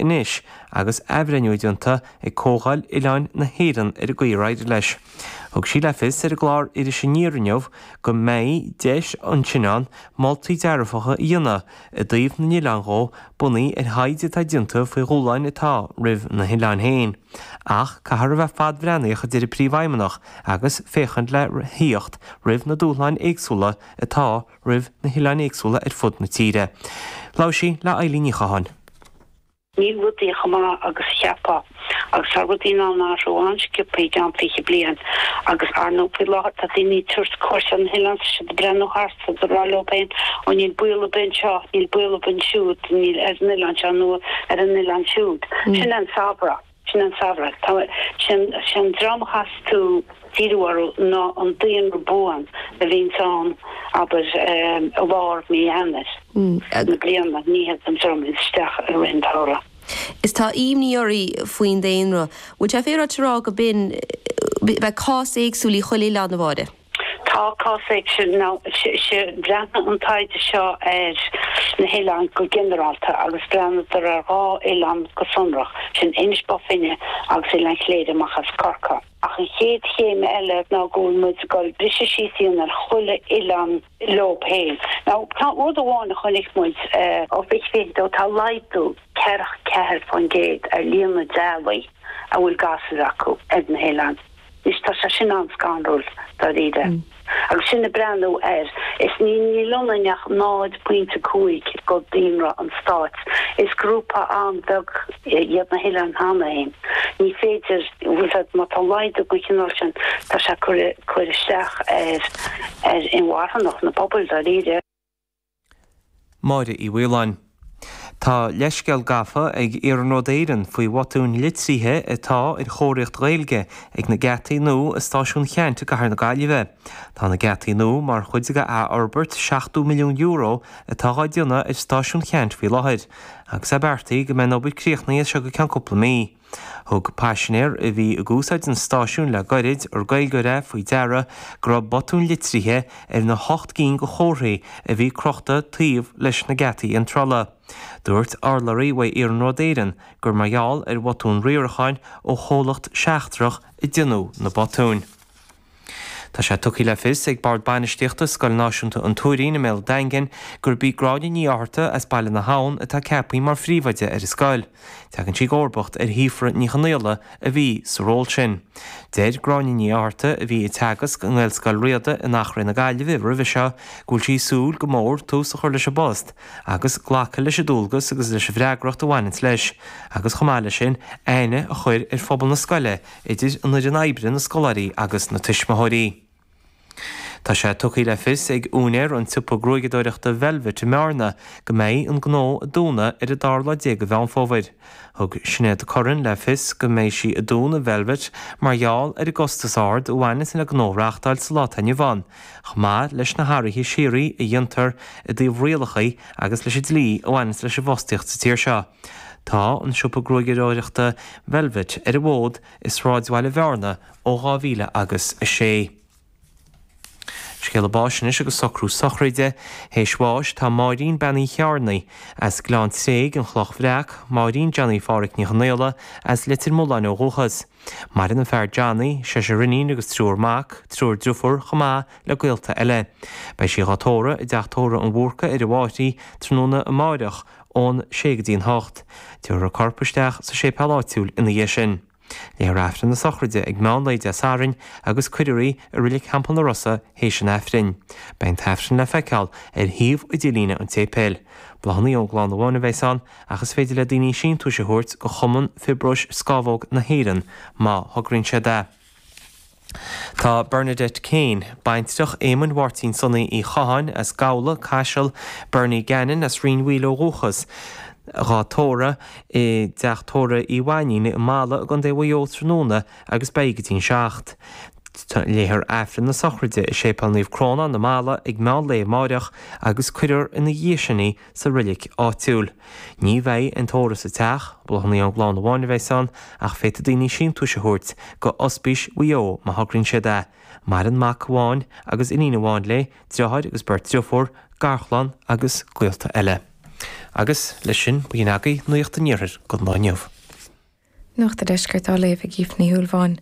anois agus athbhreithniú déanta ag Comhdháil Oileáin na hÉireann ar an gcaoi ar éirigh leis. Thug sí le fios ar an gclár Iris Aniar inniu go mbeidh deis ansin ann moltaí dearfacha a dhéanamh i dtaobh na n-oileán dhó bunaithe ar thaighde atá déanta faoi dhúshláin atá roimh na hoileáin féin. Ach caithfear a bheith fadbhreathnaíoch a deir an Príomhfheidhmeannach agus féachaint le theacht roimh na dúshláin éagsúla atá roimh na hoileáin éagsúla ar fud na tíre. Labhair sí le Eileen Ní Chatháin. Níl rudaí chomh maith agus a cheapfá. Agus tá rudaí in ann athrú an-scioptha i gceann 20 bliain. Agus, ar ndóigh, faoi láthair tá daoine ag tabhairt cuairt ar na hoileáin, tá siad ag breathnú thart, tá siad ag rá leo féin, 'Ó níl baol ar bith anseo, níl baol ar bith ansiúd, níl ar an oileán seo nó ar an oileán siúd'. Sin é an samhradh. Sin an samhradh. Sé an dream a theastós díriú orthu ná an daonra buan a bhíonns ann, abair, i lár mí Eanair na bliana, ní hé an dream a théanns isteach i rith an tsamhraidh. Is tá ímní oraí faoin daonra. Bhfuil sé féaráilte a rá go bhfuil, go mbeadh cás éagsúil i chuile oileán, a Mháire? Tá cás éagsúil. Bhreathnaigh an taighde seo ar na hoileáin go ginearálta agus bhreathnaíodar ar dhá oileán go sonrach, sin Inis Bó Finne agus Oileán Chléire amach as Corcaigh. Ach an chéad chéim eile ná go bhfuil muid ag goil á bhriseadh síos sin ar chuile oileán leob féin. Nó tá rud amháin a chonaic muid, ó fiche fiche dó, tá laghdú ceithre, ceathair faoin gcéad ar líon na dteaghlaigh a bhfuil gasúir acu ar na hoileáin. Anois tá sé sin an-scanrúil, dáiríre. Agus sinn ag breathnú air, is níl iontu ach 0.5 de dhaonra an stáit, is grúpa an-bheag iad na hOileáin cheana féin. Ní féidir, bhuel, má tá laghdú den chineál sin, tá sé ag cur isteach ar, ar inmharthanacht na bpobal, dáiríre. Máire Uí Mhaoláin. Tá leithscéal gafa ag Iarnród Éireann faoi bhotúin litrithe atá ar chomharthaíocht Ghaeilge ag na geataí nua i Stáisiún Cheaint i gCathair na Gaillimhe. Tá na geataí nua mar chuid de athfhorbairt €70 milliún atá dhá déanamh ar Stáisiún Cheaint faoi láthair, agus é beartaithe go mbeidh an obair críochnaithe seo i gceann cúpla mí. Thug paisinéar a bhí ag úsáid an stáisiúin le gairid, ar Gaeilgeoir é, faoi deara go raibh botúin litrithe ar na hocht gcinn de chomharthaí a bhí crochta taobh leis na geataí iontrála. Dúirt urlabhraí uaidh Iarnród Éireann gur mar gheall ar bhotún riaracháin ó chomhlacht seachtrach a déanadh na botúin. Tá sé tugtha le fios ag Bord Bainistíochta Scoil Náisiúnta an Tuairín i mBéal Daingin gurb í Gráinne Ní Fhátharta as Baile na hAbhann atá ceapthaí mar phríomhoide ar an scoil. Tagann sí i gcomharbacht ar Shíofra Ní Chonaola a bhí sa ról sin. Deir Gráinne Ní Fhátharta, a bhí ag teagasc i nGaelscoil Riada in Eachréidh na Gaillimhe roimhe seo, go bhfuil sí ag súil go mór tús a chur leis an bpost agus glacadh leis an dualgas agus leis an bhfreagracht a bhaineanns leis agus chomh maith leis sin aithne a chur ar phobal na scoile idir an fhoireann oibre, na scoláirí agus na tuismitheoirí. Tá sé tugtha le fios ag úinéir an tsiopa gruaigeadóireachta Velvet i mBearna go mbeidh an gnó ag dúnadh ar an dara lá déag de Mheán Fómhair. Thug Sinéad Curran le fios go mbeidh sí ag dúnadh Velvet mar gheall ar an gcostas ard a bhaineanns le gnó a reáchtáil sa lá atá inniu ann. Chomh maith leis na hathruithe síoraí a dhéantar i dtaobh rialacha agus leis an dlí a bhaineanns leis an bhfostaíocht sa tír seo, tá an siopa gruaigeadóireachta Velvet ar an bhfód i sráidbhaile Bhearna ó 2000 agus a sé. Scéala báis anois agus socrú sochraide théis bháis Tá Máirín Bean Uí Chearnaigh, as Gleann Tréig, An Chloch Bhreac, Máirín Johnny Pháraic Ní Chonaola, as Leitir Mealláin ó dhúchas, Maireann a fear Johnny, seisear inín agus triúr mac, triúr driofúr chomh maith le gaolta eile. Beidh sí dhá tórramh i dteach tórraimh an Bhúrcaigh ar an bhFairche tráthnóna amáireach ón 6 go dtí an 8. Tabharfar a corp isteach sa séipéal áitiúil ina dhiaidh sin. Léifear Aifreann na sochraide ag meán lae Dé Sathairn agus cuirfear í i Reilig Theampall na Rosa théis an Aifrinn. Beidh an t-aifreann le feiceáil ar shuíomh idirlíne an tséipéil. Bláthanna ón gclann amháin a bheas ann ach is féidir le daoine síntiúis a thabhairt do Chumann Fiobróis Scamhóg na hÉireann má thograíonn siad é. Tá Bernadette Kane, baintreach Éamoinn Mháirtín Sonaí Uí Chatháin as Gabhla, Caiseal, Bernie Gannon as Rinn Mhaoile ó dhúchas, dhá tórramh i dteach tórraimh Uí Mhainnín i mBalla i gContae Mhaigh Eo tráthnóna agus beidh go dtí'n seacht. léifear Aifreann na sochraide i Séipéal Naomh Crónán i mBalla ag meán lae amáireach agus cuirfear ina dhiaidh sin í sa reilig áitiúil. Ní bheidh an tórramh sa teach, bláthanna ón gclann amháin a bheas ann, ach féadfaidh daoine síntiúis a thabhairt do Ospís Mhaigh Eo má thograíonn siad é. Maireann mac amháin agus iníon amháin léi, deartháir agus beirt deirfiúr, garchlann agus gaolta eile. Agus leis sin, b'in agaibh nuaíocht an iarthair don lá inniu. Nuacht an Deiscirt á léamh ag Aoife Ní Shúilleabháin.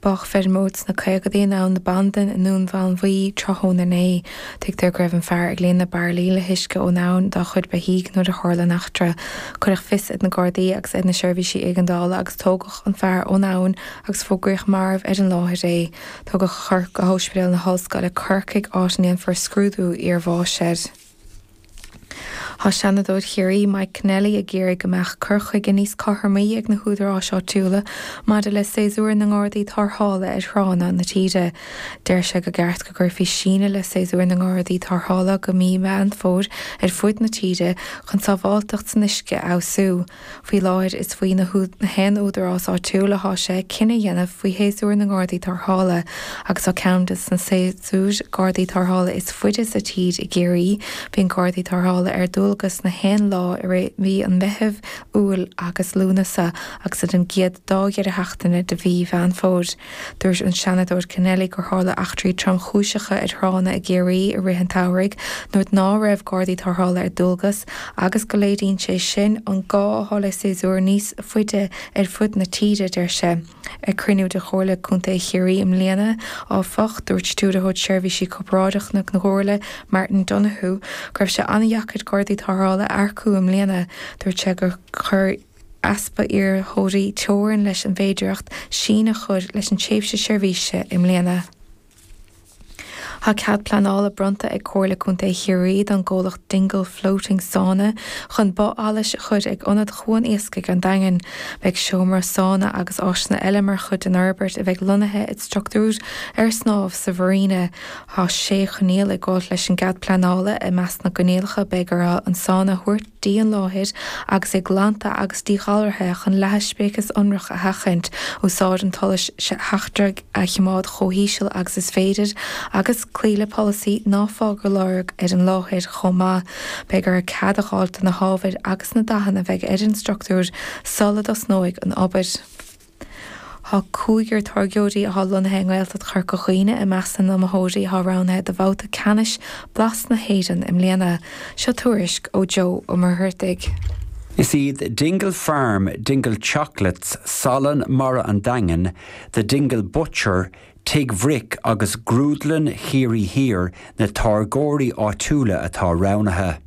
Bádh feirmeoir sna caogadaí in Abhainn na Bandan i nDún Mánmhaí tráthnóna inné. Tuigtear go raibh an fear ag líonadh bairillí le huisce ón abhainn dá chuid beithígh nuair a tharla an eachtra. Cuireadh fios ar na Gardaí agus ar na seirbhísí éigeandála agus tógadh an fear ón abhainn agus fógraíodh marbh ar an láthair é. Tugadh a chorp go hOspidéal na hOllscoile, Corcaigh, áit a ndéanfar scrúdú iar bháis air. Tá Seanadóir Chiarraí Mike Kennelly ag iarraidh go mbeadh cur chuige níos cothromaí ag na húdaráis áitiúla maidir le séasúr na nGardaí Tarrthála ar thránna na tíre. Deir sé gur cheart go gcuirfí síneadh le séasúr na nGardaí Tarrthála go mí Mheán Fómhair ar fud na tíre chun sábháilteacht san uisce a fheabhsú. Faoi láthair is faoi na haon údarás áitiúil atá sé cinneadh a dhéanamh faoi shéasúr na nGardaí Tarrthála agus tá ceann de na séasúir Gardaí Tarrthála is faide sa tír i gCiarraí. Bíonn Gardaí Tarrthála ar dualgas na haon lá i rith mhí an Mheithimh, Iúil agus Lúnasa agus ar an gcéad dá dheireadh seachtaine de mhí Mheán Fómhair. Dúirt an Seanadóir Kennelly gur tharla eachtraí tromchúiseacha ar thránna i gCiarraí i rith an tsamhraidh nuair ná raibh Gardaí Tarrthála ar dualgas agus go léiríonn sé sin an gá atá le séasúr níos faide ar fud na tíre, a deir sé. Ag cruinniú de Chomhairle Contae Chiarraí i mbliana, áfach, dúirt Stiúrthóir Seirbhísí Corparáideacha na Comhairle, Martin Donohoe, go raibh sé an-deacair Gardaí Tarrthála a earcú i mbliana. Dúirt sé gur chuir. easpa iarrthóirí teorainn leis an bhféidearthacht síneadh a chur leis an tréimhse seirbhíse i mbliana. Tá cead pleanála bronnta ag Comhairle Contae Chiarraí don gcomhlacht Dingle Floating Sauna chun both allais a chur ag Ionad Chuan Iascaigh an Daingin. Beidh seomra sauna agus áiseanna eile mar chuid den fhorbairt a bheidh lonnaithe i structúr ar snámh sa mharina. Tá sé choinníoll ag gabhailt leis an gcead pleanála. I measc na gcoinníollacha beidh ar an sauna a thabhairt. dtí an láthair agus é glanta agus díghalraithe chun leathadh speiceas ionrach a sheachaint, úsáid an tsolais sheachtraigh a chimeád chomh híseal agus is féidir, agus cloí le polasaí 'ná fág aon lorg ar an láthair' chomh maith. Beidh orthu cead a dh'fháilt do na hábhair agus na dathanna a bheidh ar an structúr sul a dtosnóidh an obair. Tá cúigear táirgeoirí atá lonnaithe i nGaeltacht Chorca Dhuibhne i measc na n-iomaitheoirí atá roghnaithe do bhabhta ceannais Blas na hÉireann i mbliana. Seo tuairisc ó Joe Ó Muircheartaigh. Is iad Dingle Farm, Dingle Chocolates, Salann Mara an Daingin, The Dingle Butcher, Tigh Bhric agus Grúdlann Chiarraí Thiar na táirgeoirí áitiúla atá roghnaithe.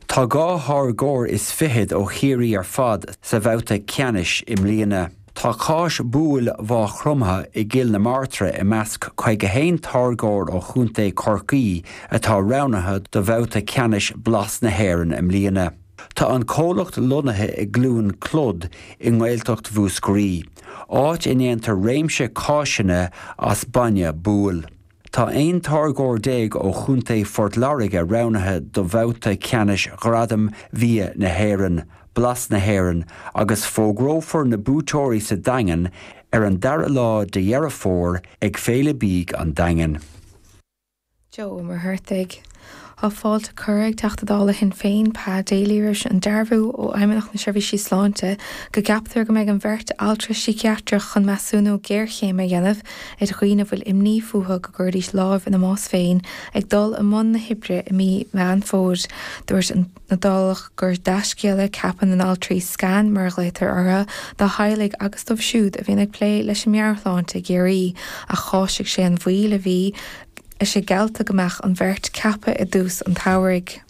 Tá dhá tháirgeoir is fichead ó Chiarraí ar fad sa bhabhta ceannais i mbliana. Tá cáis bhuabhaill Mhaigh Chromtha i gCill na Martra i measc 51 táirgeoir ó chontae Chorcaí atá roghnaithe do bhabhta ceannais Blas na hÉireann i mbliana. Tá an comhlacht lonnaithe i gCluain Clod i nGaeltacht Mhúscraí, áit a ndéantar réimse cáiseanna as bainne buabhaill. Tá 11 táirgeoir ó chontae Phort Láirge roghnaithe do bhabhta ceannais Ghradaim Bhia na hÉireann, Blas na hÉireann, agus fógrófar na buaiteoirí sa Daingean ar an 2ú lá de Dheireadh Fómhair ag Féile Bídh an Daingin. Joe Ó Muircheartaigh. Tá fáilte curtha ag Teachta Dála Shinn Féin Pa Daly roimh an dearbhú ó Fheidhmeannacht na Seirbhísí Sláinte go gceaptar go mbeidh an bheirt altra síciatrach chun measúnú géarchéime a dhéanamh ar dhaoine a bhfuil imní fúthu go gcuirfidís lámh ina mbás féin ag dul i mbun na hoibre i mí Mheán Fómhair. Dúirt an Dálach gur dea-scéal é ceapadh na n-altraí 'scan' mar a ghlaotar orthu, do theaghlaigh agus dóibh siúd a bhíonn ag plé leis an meabhairshláinte i gCiarraí, ach cháisigh sé an mhoill a bhí, is é geallta go mbeadh an bheirt ceaptha i dtús an tsamhraidh.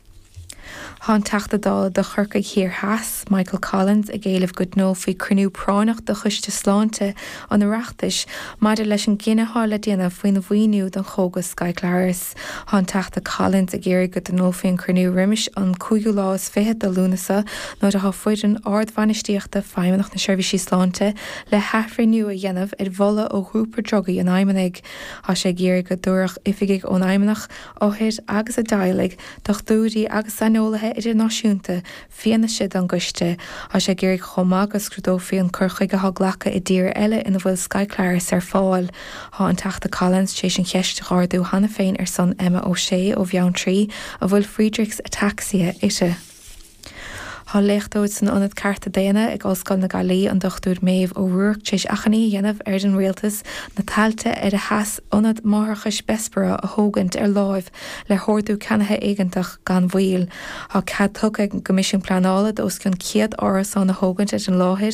Tá an Teachta Dála do Chorcaigh Thiar Theas, Michael Collins ag éileamh go dtionólfaí cruinniú práinneach de Choiste Sláinte an Oireachtais maidir leis an gcinneadh atá le déanamh faoin mhaoiniú don chógas Skyclarys. Tá an Teachta Collins ag iarraidh go dtionólfaí an cruinniú roimis an cúigiú lá is fiche de Lúnasa nuair atá foireann ardbhainistíochta Feidhmeannacht na Seirbhísí Sláinte le hathbhreithniú a dhéanamh ar mholadh ó ghrúpa drugaí an Fheidhmeannais. Tá sé ag iarraidh go dtabharfadh oifigigh ón bhFeidhmeannacht, othair agus a dteaghlaigh, dochtúirí agus saineolaithe idirnáisiúnta fianaise don gcoiste. Tá sé ag iarraidh chomh maith go scrúdófaí an cur chuige atá glactha i dtíortha eile ina bhfuil Skyclarys ar fáil. Tá an Teachta Collins tar éis an cheist a ardú cheana féin ar son Emma O'Shea ó Bheanntraí a bhfuil Friedreich's ataxia uirthi. Tá léachtóir san Ionad Cearta Daonna ag Ollscoil na Gaillimhe, an Dr Maeve O'Rourke, tar éis achainí a dhéanamh ar an Rialtas na tailte ar a sheas Ionad Máithreachais Bessborough a thógaint ar láimh le hordú ceannaithe éigeantach gan mhoill. Tá cead tugtha ag an gCoimisiún Pleanála d'os cionn 100 árasán a thógaint ar an láthair,